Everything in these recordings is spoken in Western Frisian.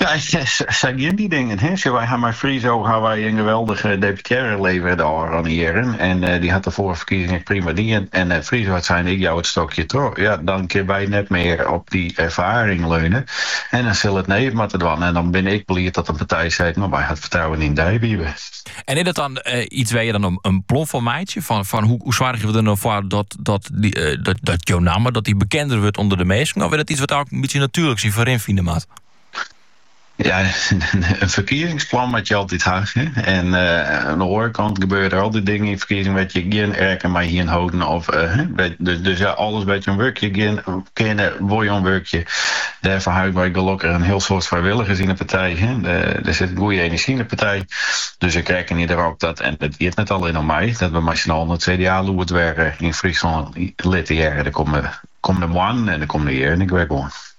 Ja, sa gienen dy dingen. Sjoch, wy ha mei Friso ha wy in geweldige deputearre levere de ôfrûne jierren en dy hat de foarige ferkiezing ek prima dien en Friso hat sein ik jou it stokje troch. Ja, dan kinne wy net mear op dy erfaring leune en dan sille it nijen moatte dwaan en dan bin ik bliid dat in partij seit mar wy ha it fertrouwen yn dy Wiebe. En is dat dan iets wêr je dan in plan foar meitsje fan hoe soargje we der no foar dat jo namme dat dy bekender wurdt ûnder de minsken of is dat iets wat ek in bytsje natuerlik syn foarm fine moat? Ja, in ferkiezingsplan moat je altyd ha. En oan de oare kant gebeure der altyd dingen yn ferkiezingen wêr't je gjin rekken mei hienen holden of dus ja, alles wêr't je oan wurkje kinne, wol je oan wurkje. Dêrfoar ha wy gelokkich in hiel soad frijwilligers yn de partij. Der sit in goeie enerzjy yn de partij, dus ik rekkenje derop dat, en it giet net allinnich om my, dat we mei syn allen it CDA-lûd wer yn Fryslân litte hearre de kommende moannen en de kommende jierren ek wer gewoan.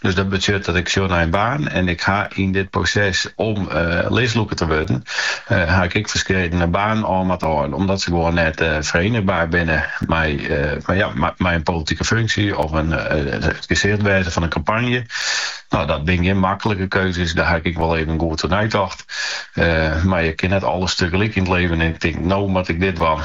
Dus dat betsjut dat ik sjoch nei in baan en ik ha yn dit proses om listlûker te wurden, ha ik ek ferskedene banen ôf moatte hâlden, omdat se gewoan net ferienigbaar binne mei mei in politike funksje of it gesicht wêze fan in kampanje. No, dat binne gjin maklike keuzes, dêr ha ik ek wol even goed oer neitocht, mar je kinne net alles tegelyk yn it libben en ik tink, no moat ik dit dwaan.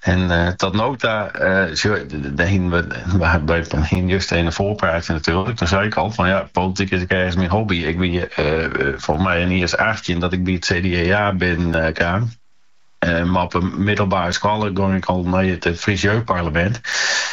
En tot no ta hienen we just in foarpraatje natuerlik. Toen sei ik al van ja, politiek is ek ergens myn hobby. Ik wie folgens my in jier as 18 dat ik by it CDA binnenkaam. Mar op 'e middelbare skoalle gong ik al nei it Frysk Jeugdparlemint.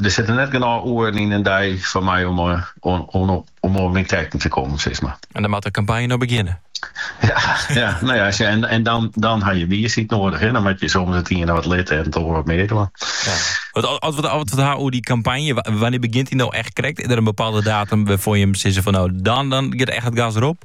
Der sitte net genôch oeren yn in dei foar my om oan myn trekken te kommen, sis mar. En dan moat de kampanje no begjinne. Ja, ja, no ja, as je, en, en dan, dan ha je wiisheid noadich, hè? dan moat je soms it iene wat litte en it oar wat mear dwaan. Ja. Wat, as we it ha oer dy kampanje, wannear begjint dy no echt krekt? Is der in bepaalde datum wêrfoar jim sizze fan no, dan, dan giet echt it gas derop?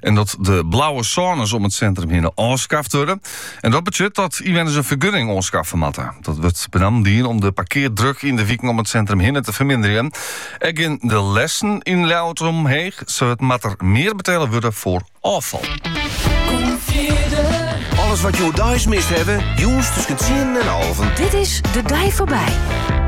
En dat de blauwe sônes om it sintrum hinne ôfskaft wurde. En dat betsjut dat ynwenners in fergunning oanskaffe moatte. Dat wurdt benammen dien om de parkeardruk yn de wiken om it sintrum hinne te ferminderjen. Ek geane de lêsten yn Ljouwert omheech, sa moat der mear betelle wurde foar ôffal. Alles wat je oerdeis mist hawwe, jûns tusken 10 en alven. Dit is De Dei Foarby.